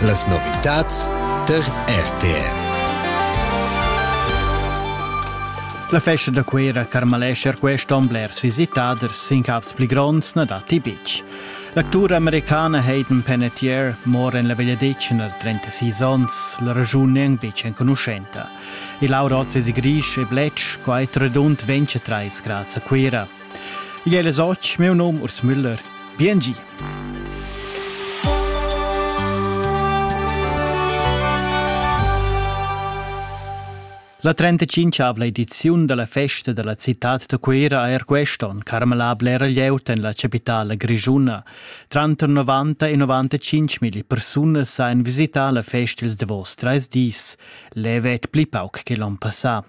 Las novitads tar RTR. La festa da Cuira carmalescher quest onn blers visitaders sin caps pli gronds na datti betg. L'actura americana Hayden Panettiere mora en la Vegliadetgna da 36 onns, la ragiun è betg enconuschenta. Il Laura Ozzi è grisch e bletsch, quai redund 23 grads a Cuira. Igl è las otg, meu nom Urs Müller. Biengi! La 35 ediziun della festa della città da Cuira ha er quest'on carmelà blera glieud en la capitala grischuna. Tranter 90 e 95 mili persunas han visità la festa ils davos treis dis, levet pli pauc che l'on passà.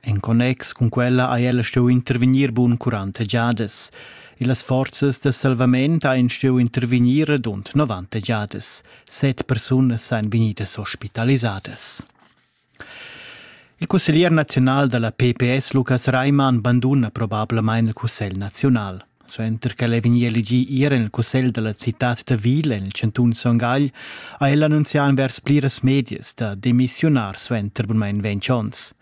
En connex cun quella ha ella stuiu intervegnir bun curanta giadas. Las forzas da salvament ein stuiu intervegnir radund 90 giadas. Set persunas ein vegnidas ospitalisadas. Il cusseglier nazional dalla PPS Lukas Reimann banduna probablamain il cussegl nazional. Suenter ch'el è vegnì elegì ir en il cussegl da la citad da Vila en il chantun Son Gagl, ha el annunzià envers pliras medias da demissiunar suenter bunmain ventg onns.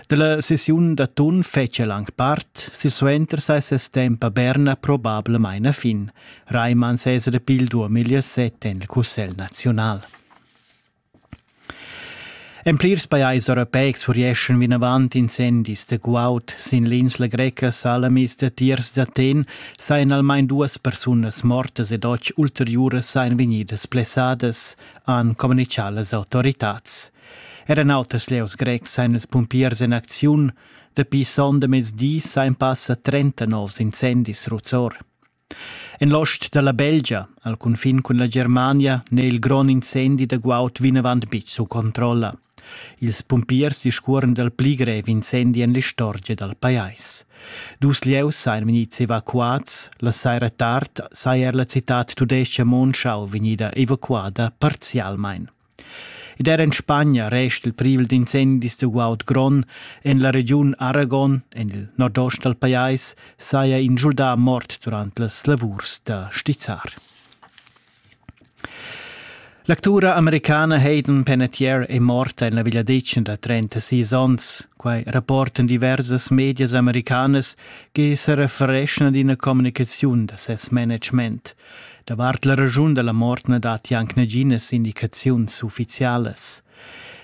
Dalla sessiun da tun fetg el anc part, silsuenter sai ses temp a Berna probablamain a fin. Raimond Cesare Pil duamiglia set en il Cussegl naziunal. En plirs pajais europeics furieschan vinavant incendis da guaud sin l'insla greca Salamis datiers d'Aten sajan almain duas persunas mortas ed otg ulteriuras sajan vegnidas blessadas, han communitgà las autoritads. Er en auters lieus grecs sajan ils pumpiers en acziun. Dapi sonda mezdi sajan passa 30 novs incendis ruzzor. En l'ost dalla Belgia, al cunfin cun la Germania, n'è il grond incendi da guaud vinavant betg sut controlla. Ils pumpiers discuoran dal pli grev incendi en l'istorgia dal pajais. Dus lieus sajan vegnids evacuads, la saira tard saja er la citad tudestga Monschau vegnida evacuada parzialmain. Ed er en Spagna resta il privel d'incendis da guaud grond. En la regiun Aragon, en il nordost dal pajais, saja in schuldà mort durant las lavurs da stizzar. L'actura americana Hayden Panettiere è morta en la vegliadetgna da 36 onns. Quai rapportan diversas medias americanas che se refereschan ad ina communicaziun da ses management – Davart la raschun dalla mort na datti anc naginas indicaziuns ufficialas.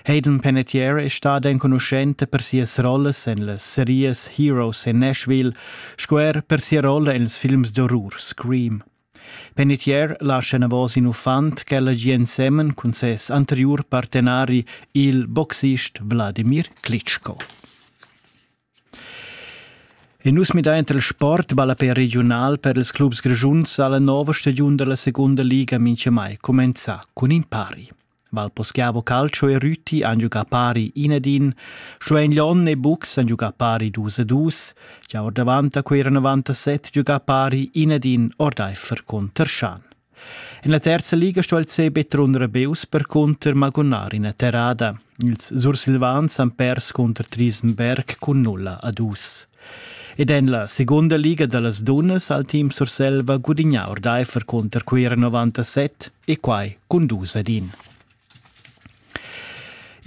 Hayden Panettiere è stada enconuschenta per sias rollas en las serias Heroes in Nashville sco er per sia rolla en ils films d'orrur Scream. Panettiere lascia enavos in uffant ch'ella gia ensemen cun ses anteriur partenari, il boxist Vladimir Klitschko. E nus midain tra il sport e ballape regiunal per ils clubs grischuns ha la nova stagiun dalla secunda liga minchamai cumenzà cun in pari. Valposchiavo Calcio e Rüti han giugà pari in ed in, Schwein Lyon e Bux han giugà pari dus e dus, gia ordavant a quei 97 giugà pari in ed in ordaifer con Terschan. En la terza liga sto il CB trunder Beus percunter magunar ina terrada. Ils Sursilvans han pers cunter Trisenberg cun nulla a dus. Ed en la segunda liga da las dunnas ha il team Surselva gudignà ordaifer cunter Cuira 97 e quai cun dus ad in.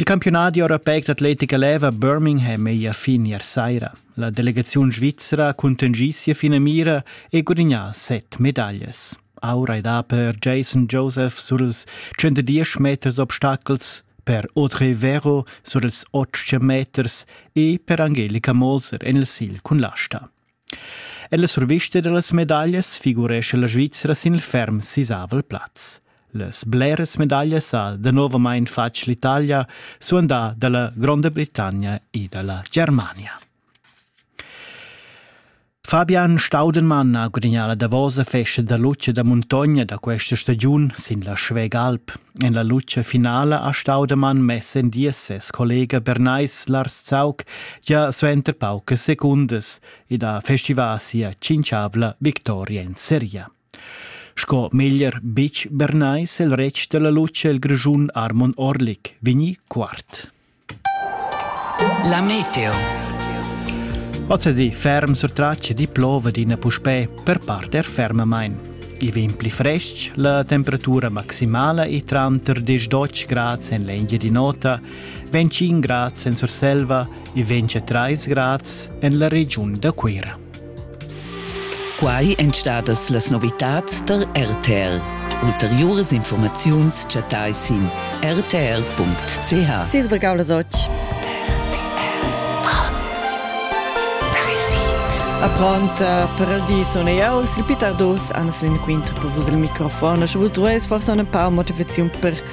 Il campiunadi europeic d'atletica leva Birmingham ei a fin ier saira. La delegaziun svizra cuntengi sia finamira e gudignà set medaglias. Aura e da per Jason Joseph sur ils 110 meters obstacels, per Audrey Vero sur ils 8 meters e per Angelika Moser en il sil cun l'asta. Ella survista dallas medaglias figurescha la Svizra sin il ferm sisavel plaz. Las bleras medaglias ha danovamein fatg l'Italia, suandà dalla Gronda Britannia e dalla Germania. Fabian Staudenmann ha gudagnà la davosa festa da luce da muntogna da questa stagiun sin la Schwägalp. En la luce finala a Staudemann messen dies ses collega Bernais Lars Zaug gia suenter paucas secundas ed ha festivà sia cinciavla victoria in seria. Sco meglier Bitsch Bernais il retg della luce il Grischun Armon Orlik vegni quart. La meteo. Ozzasi ferm sur tracce di plova d'ina puspè per parte er fermamain. I vegn pli frestg, la temperatura maximala è tranter 10-12 grads en l'Engia di nota, 25 grads en Surselva e 23 grads en la regiun da Cuira. Quai èn stadas las novitads tar RTR. Ulteriuras informaziuns chattai sin rtr.ch. Sis brigaulas oggi. A pront eh, per il di sono io, il Pitar Dus, Anna Selin Quinter per vos il microfon. Sche vos duais forse una pa motivazione per